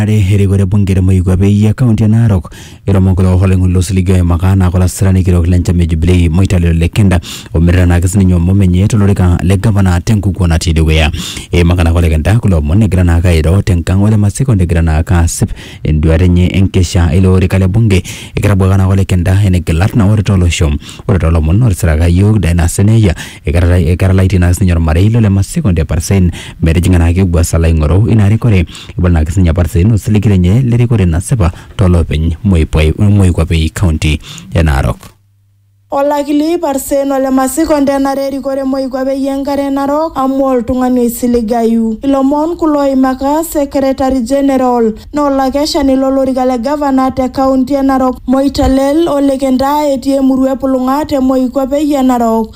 Are erikore bunge te moikuape eyia kaunti e Narok eiro mokure eoho oloing'oni losiligi oimaka naa kolasirani kitok le nchama e Jubilee Moitalelo Lekenda ometerenaki sininye omom enye tolorika le gavana tenkukuo natii dukuya. Eimaka naake Olekenda kulo omon egira naake airo tenkang ole Masiko negira naake asip enduata enye enkesha eilo orika le bunge. Eketabawua naake Olekenda ene gilat naa ore tolosho ore tolomon otisiraka iyiook Dynasty Neyia eketalaitie naake sininye ormarei lole Masiko Ndeparsen metijing'a naake Ugwasa laing'oru ina rikore. Ebol naa sininye apart Saino osiligi lenye le rikore nasipa to loopeny moikuape e kaunti e Narok. Olakili Parsen ole Masiko ntenare e rikore moikuape e Enkare e Narok amu oltung'ani oisiligayu. Ilomon kulo oimaka Secretary General na olakeshani lo lorika le Gavana te kaunti e Narok Moitalel Ole Kentaa etii emurua e Pulung'a te moikuape e Narok.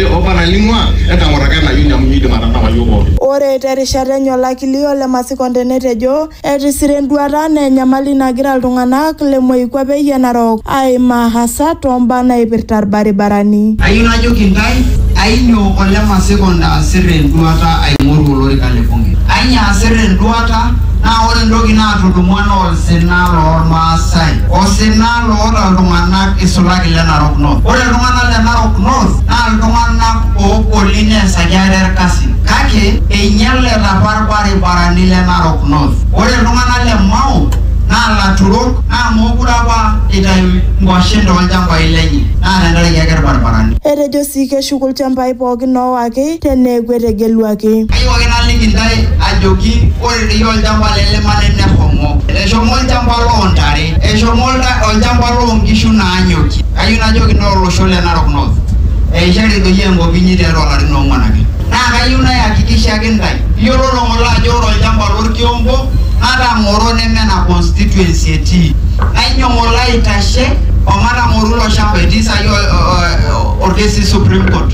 Jehova naing'ua, entang'orraka ena ayioni amu meidim atanapa iyiook pooki. Ore te rishata enye olakili o le Masikonde netejo etisira enduata anaa enyamali nagira iltung'ana le moikuape e Narok aimaa hasa too mbaa naipirta ilbaribarani. Ayieu najoki intae, ainyoo o le Masikonde aasirr enduata aing'oru olorika le bunge? Ainyoo aasirr enduata? Naa ore entoki naatudumua naa olsina loo Ilmaasai. Osina Olmanyara loota iltung'ana eisulaki le Narok North. Ore iltung'ana le Narok North naa iltung'ana oogoli neesaki ate ilkasin kake einyaleta apa ilbaribarani le Narok North. Ore iltung'ana le Mau naa laturok naa mookure apa eitayu nkuashen too lchambai lenye naa tenkaraki ake ilbaribarani. Etejo sii keshuku ilchambai pooki oowaki. sii te neeku etegeluaki. Kayieu ake naliki intae ajoki ore dei olchamba le Lemane neshomo. Eshomo olchamba loo ntare. Eshomo olchamba loo nkishu naanyokie. Kayieu najoki intae olosho le Narok North, eishari doi enkop inyi tiatua ilarin oong'uan ake. Naa kayieu nayakikishaki intae, iyiololo ng'ole ajo ore olchamba lo Lkiompo natang'oro neme ena constituency etii. Nainyo ng'ole aitashe omatang'oru ilo shamba etii saai olkesi e Supreme Court.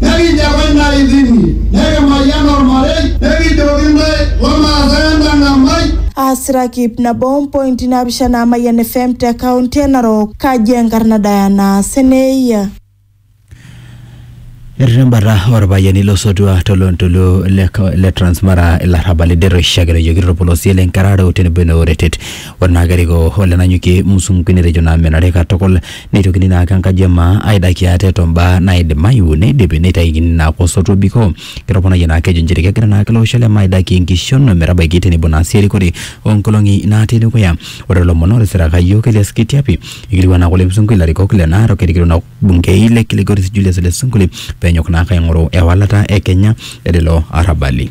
Nekinjaku intae intimi, nekimayian olmarei, nekijoki intae lomaasai entang'amai. Aasirakip nabo ompointi naapishana Mayian FM te county e Narok. Kaji enkarna Diana Seneyia. Etii embata orpayiani losotua tolontoluo le Transmara ilarrabal ider oishakenoyioki torpolosie le Nkararo tenebo ene Oretet. Ore naa kerikoo ole Nanyuki Musungu netejo naa menare katukul neitokini naa ake enkaji e maa aidaki ate to mbaa naaidimayu neidipi neitaikini naa ake osotua obikoo. Ketoponayie naa ake ejo nchere kegira naa ake ilo osho le maa aidaki enkishon o metabaiki tenebo naa sii erikore oo nkolong'i naatii dukuya. Ore to lomon otisiraka iyiook Elias Kitiapi eikilikuana naa ake Ole Sunkuli ilarikok le Narok erikito naa olbungei le Kilgoris Julius Ole Sunkuli pee enyok naa ake aing'oru ewalata e Kenya e lelo arrabali.